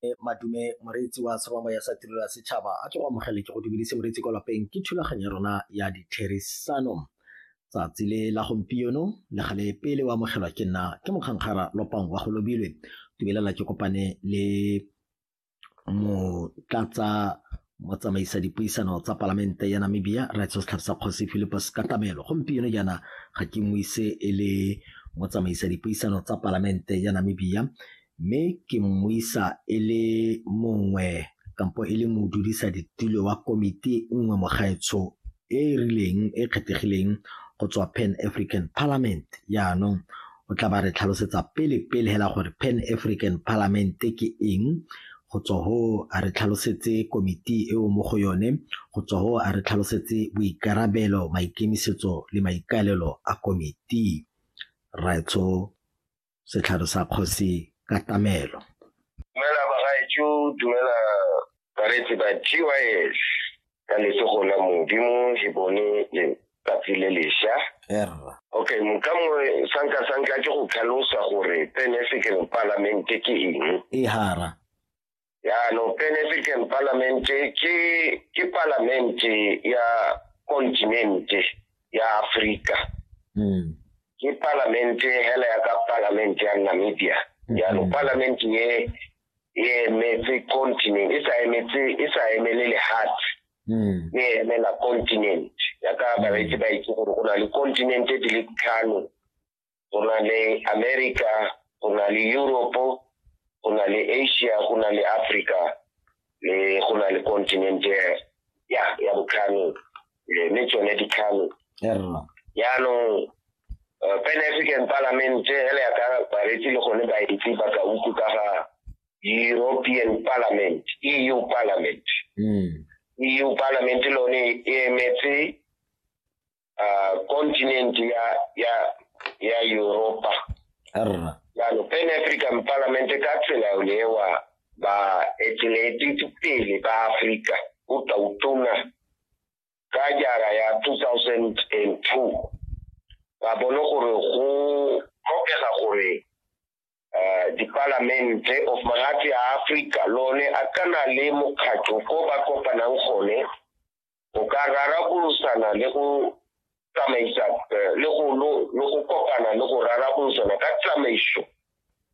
E, madume moreetsi wa tshwamamo ya sa tirelo ya setšhaba a ke go amogele ke go dumedise moreetsi kwa lapeng ke thulaganyo ya rona ya ditherisano tsatsi le la gompieno le gale pele o amogelwa ke nna ke mokgankgara lopang wa go lobilwe dumelela ke kopane le motlatsa motsamaisa dipuisano tsa palamente ya namibia righteous tlhapisa kgosi philipus katamelo gompieno jaana ga ke mo ise e le motsamaisa dipuisano tsa palamente ya namibia mme ke mmuisa e le mongwe kampo e le modudisa ditulo wa komiti nngwe mogaetsho e e rileng e kgethegileng go tswa pan african parliament yaanong O tla ba re tlhalosetsa pele pele hela gore Pan African Parliament ke eng go tswa ho a re tlhalosetse komiti eo mo go yone go tswa ho a re tlhalosetse boikarabelo maikemisetso le maikaelelo a komiti raetsho setlhare sa kgosi ka tamelo dumela bagaetsho dumela bareetsi ba gys ka letsogo la modimo he bone letsatsi le lesha okay moka mongwe sanka sanka ke go tlhalosa gore pan african parliament ke eng e hara yaanong pan african parliament ke ke parliament ya continent ya africa mm. ke parliament hela ya ka parliament ya namibia yaanong mm. parliament ye e emetse continent e sa emetse e sa emele lehatshe hmm. e emela continent ya ka hmm. bareetsi ba itse gore go na le continent di le tlhano go na le america go na le europe go na le asia go na le africa le go na le continent ya ya botlhano eh, le tsone dikhalo yaanong eh, pan african parliament ele ya ka baretsi le gone baetsi ba ka uku ka ga european parliament eu parliament hmm. eu parliament lone e emetse ah, continent ya ya ya europa jalo pan african parliament ka tsela yolewa ba etelete pele ba afrika o tla utona ka jara ya 2002 ba bone gore go tlhokega gore eh, dipalamente of magatse a Africa lone a kana le mokgatlho ko ba kopanang gone go ka rarabolosana le go tsamaisa eh, le go lo- le go kopana le go rarabolosana ka tsamaiso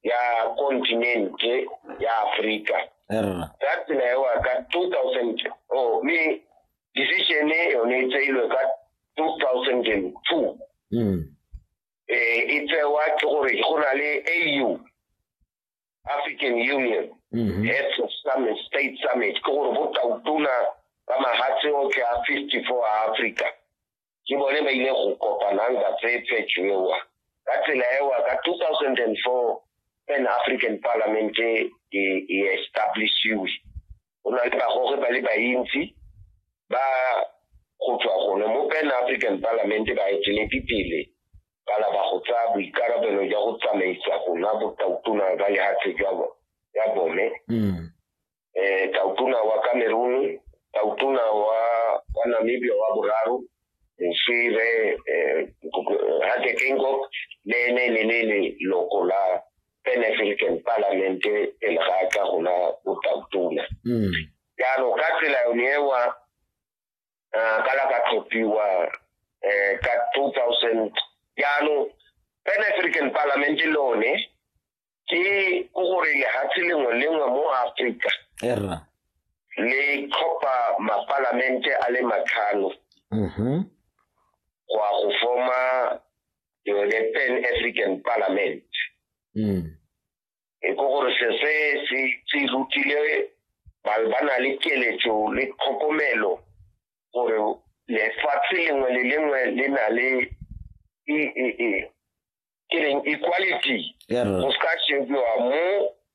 ya kontinente ya aforika erra ka tsela ewa ka 2000 oh, mme decision e yone e tseilwe ka 2002 mm eh, e tsewa ke gore go na le au African Union mm -hmm. Heads of Summit, State Summit, ke gore bo tautona ba mahatshe otlhe a 54 a Africa ke bone ba ile go kopanang ba tseye phetšo ewa ka tsela ewa ka 2004 pan African Parliament e, e establishiwe go na le bagoge ba le bantsi ba go tswa gone mo pan african parliament ba eteledi pele ba laba go tsaya boikarabelo jwa go tsamaisa go nwa botautona ba lehatshe jwa ya bone mm. eh tautona wa Cameroon tautona wa wa Namibia wa boraro mosire eh, eh Hatekengok le ne le le le loko la pan african parlamente pele ga a tla go na botautona mm. jaanong ka tsela yone ewa um ka la ka tlhophiwa um ka two thousand jaanong pan african parlamente le one ke ko gore lehatshe lengwe lengwe mo afrika le tlhopha mapalamente a le matlhano mm-hmm. go ya go forma ke yone pan african parliament mm. e ko gore se se se se rutile ba ba na le keletso le tlhokomelo gore lefatshe lengwe le lengwe le na le e e e ke reng equality go se ka shebiwa mo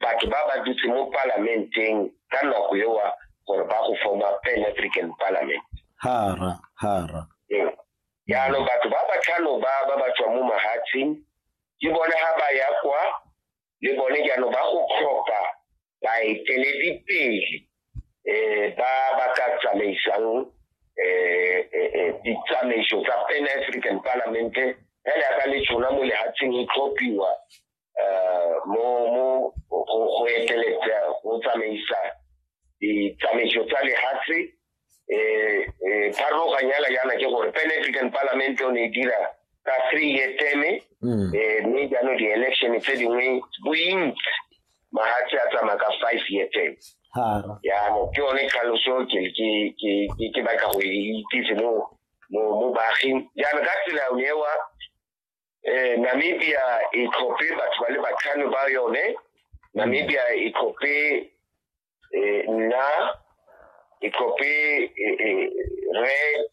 batho ba ba dutse mo palamenteng ka nako ewa gore ba go forma pan african parliament hara hara ee. jaanong batho ba ba tlhano ba ba ba tswa mo mahatsheng ke bone ga ba ya kwa le bone jaanong ba go tlhopha baeteledipele um ba ba ka tsamaisang um ditsamaiso tsa pan african parlamente fela yaka le tshona mo lehatsheng e tlhophiwa eh, mo mo go eteletsa go tsamaisa ditsamaiso tsa lehatshe eh, eh, pharologanyala yana ke gore pan african parliament o ne e dira ka three year teme mm. mme jaanong di-election tse dingwe bointsi mahatshe a tsamaya ka five year teme yaanong ke yone tlhaloso ke batla go e itsise mo mo baaging jaanong ka tsela ewa eh Namibia e tlhophe batho ba le batlhano ba yone Namibia e tlhophe eh nna e tlhophe eh, eh, re